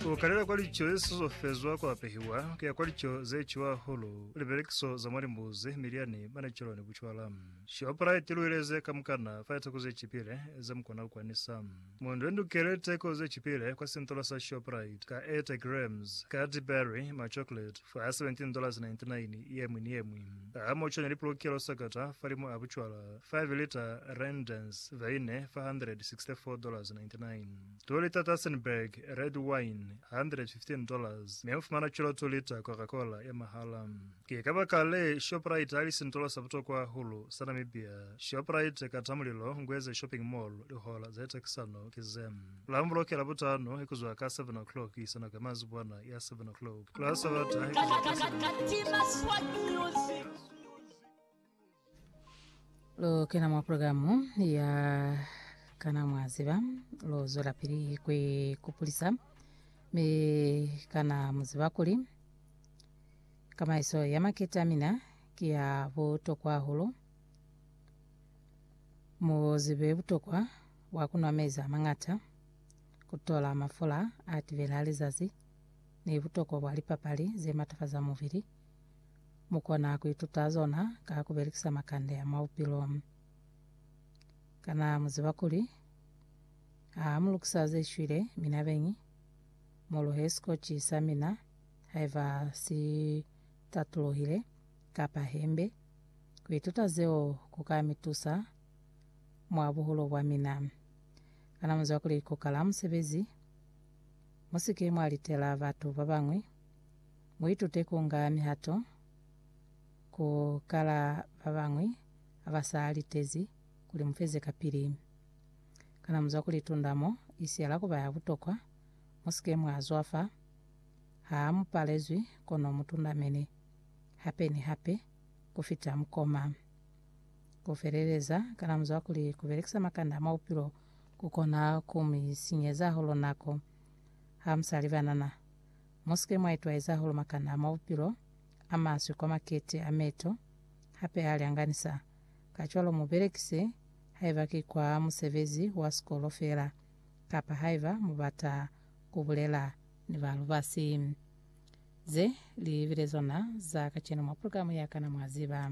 Ku kalela kwa lico ze sizofezwa kwa pehiwa, ku ya kwa lico ze ciwa hahulu, libelekiso za mwa limbuzi, milyani, manecelo ni bucwala. Shoprite lu ileze kamukana fa liteko ze cipile ze mu kona ku kwanisa. Mu ndwendukele liteko ze cipile kwa sintola sa Shoprite ka 80 grams, Cadbury, ma chocolate fa $17.99 ye mwi ni ye mwi. Ha mo cwani li pulukelo sakata fa limu a bucwala. 5 liter rendens veine $464.99 2 liter Tassenberg red wine $115 mi mufumana cwalo 2 liter Coca Cola ya mahala Ki kabakale Shoprite yali sintolo sa butokwa hahulu sa Namibia Shoprite kata mulilo Ngweze Shopping Mall Lihola za itakisano ki ze la mubuloke Labutano kuzwa ka 7 o'clock kuisa nako ya mazibwana ya 7 o'clock la Sabata kuzwa ka 7 o'clock kuisa nako ya mazibwana ya 7 o'clock. Lu kena mwa pulogalamu ya Kana Mwa Ziba? Lu zwelapili ku ikupulisa, mi kana mu ziba kuli kamaiso ya makete a mina ki ya butokwa hahulu? Mu zibe butokwa bwa ku nwa mezi a mañata, ku tola mafula a tibela lizazi, ni butokwa bwa lipapali ze matafaza mubili. Mu kona ku ituta zona ka ku belekisa makande a mwa bupilo. Kana mu ziba kuli ha mu lukisa ze shwile mi na beñi, mu luhe sikotshi sa mina haiba si tatulohile kapa hembe? Ku ituta zeo ku ka mi tusa mwa buhulu bwa mina. Kana mu ziba kuli ku kala musebezi? Mu si ke mwa litela batu ba bañwi. Muitute ku nga mihato ku kala ba bañwi ha ba sa litezi kuli mu feze kapili. Kana mu zwa ku litunda mo i siyala ku ba ya butokwa? Mu si ke mwa zwafa ha mu palezwi kono mu tundamene hape ni hape ku fita mukoma. Ku feleleza, kana mu zwa kuli ku belekisa makanda a mwa bupilo ku kona ku mi sinyeza hahulu nako ha mu sa libanana Mu si ke mwa itwaeza hahulu makana a mwa bupilo, a maswi kwa makete, a meto, hape a lyanganisa. Kacwalo mu belekise, haiba ki kwa musebezi wa sikolo feela, kapa haiba mu bata ku bulela ni ba lubasi. Ze li bile zona za kacenu mwa pulugalamu ya Kana Mwa Ziba?